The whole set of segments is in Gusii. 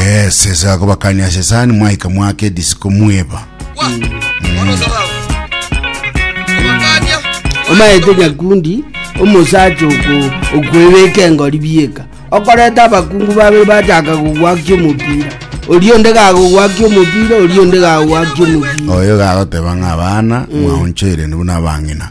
Yes, yes, akobakania sesani mwaika mwake disiko mweba. omaete nyakundi omosacha oku- okwebeka engori bieka okoreta abakungu babere bachaka gogwakia omopira oria onde gagogwakia omopira oria onde gagogwakia omopira Oyo gagoteba ng'a abana mwaonchoire nibo nabang'ina.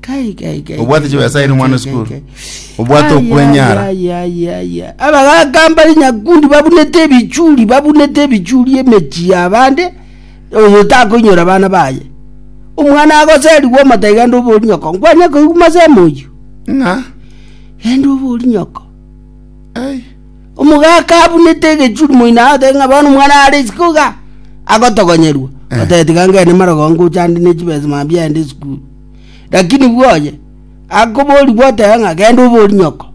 Kai, kai, kai, Obwate kai, chibesairi kai, omwana kai, esukuru. kai, kai. Obwate Ai, okwenyara. ai, ai, ai, ai. abagaka mbari nyakundi babunete ebichuri babunete ebichuri emechi yabande oyo takoinyora abana baye omwana agoserigwa omata iga ande obori nyoko nkwanye koigwa masemo oyio Ng'a. ende obori nyoko Ai. omogaka abunete egechuri moino agote ng'a bono omwana are isiko iga agotogonyerwa Eh. otebe tiga ngende marogongo chande ne chibesa mambia ende esukuru Lakini bwoye akoboria gwoteba ng'a genda oborie nyoko.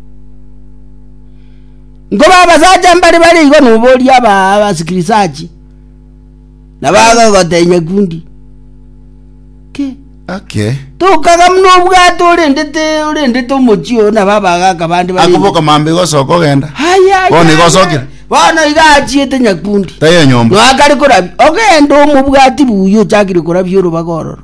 Nkoba abasacha mbare bare igo noboria aba abasikirisachi na bagagoteba nyakundi. Ki? Okay. Tokaga muna obwate orendete orendete omochi oo na baba gaka bande bare. Akoboka mambe gosoka ogenda. Haya. Bono igo osokire? Bono iga achiete nyakundi. Tayo nyomba. Noakare korabia. Ogenda omobwati buya ochakire korabia orobaga ororo.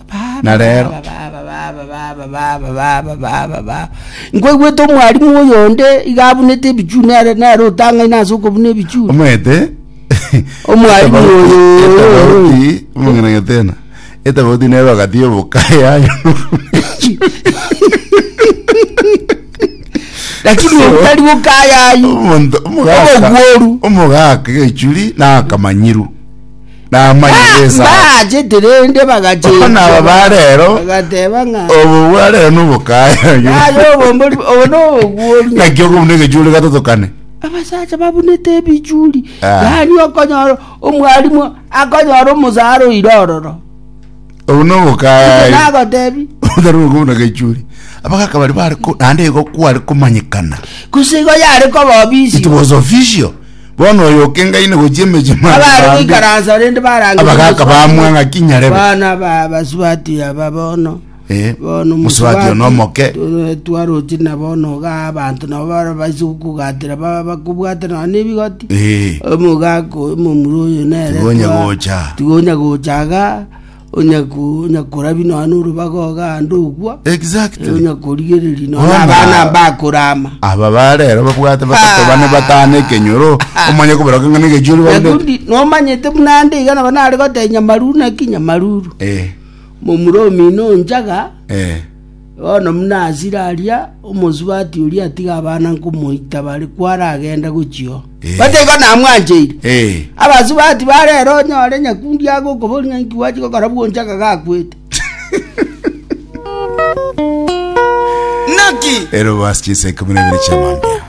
Na rero- Nkwaigwete omwalimu oyonde iga abunete ebichuni nere nere otang'aine ase okobuna ebichuni. omanyete Omwalimu oyo- etabauti omong'ina getena etabauti nero agati yobokaya Lakini obutari bokayayi. omonto omogaka Obogworu. omogaka egechuri nakamanyiru namanye Ah, Yesu aye. mbaachete rende bagachenjwa. Bono aba ba rero, Bagateba ng'a. obo bwa rero nobokaya Aye obombori obo noboguori. naki okobuna egechuri gatotokane abasacha babunete ebichuri Ah. yaani okonyora omwalimu akonyora omusara oire ororo obu nobokaya nagotebi otari okobuna gechuri abagaka bari bare ko- naende igo kware komanyekana gose igo yare koba obisi it was official Bono oyo okengaine gochia emechie mare Abare bambe, goikaransa rende barange abagaka bamwa ng'aki nyarebe. Bana ba basubati aba bono. Eh, Bono musubati ono omoke. tu- twarochi na bono ga abanto nabo bara baise kugatira ba- bakobwate na nebigoti. Eh, Omogako omomura oyo nere. Tigonya twa- gocha. Tigonya gocha ga Onya korabi nonya n'orobaga ogande ogwa. Exactly. Onya korigereri nonya Bona. abana mbakorama. aba barero babwate batato Ah. bane batano ekenyoro omanye koberoka ng'a negechuri bagete Nakundi nomanyete buna ande iga nabo nare goteba nyamaruru naki nyamaruru. Eh, Momura omino njaga eh. Bono buna achire aria, omosubati oria atiga abana nkomoita bare kwaragende gochio. Botiga namwancheire. Abasubati ba rero onyore nyakundi agokoboria ng'a inki gwachi gokora bw'onchaka gakwete. Naki? Erobasi chinsa ikomi na ibere chi'amambia.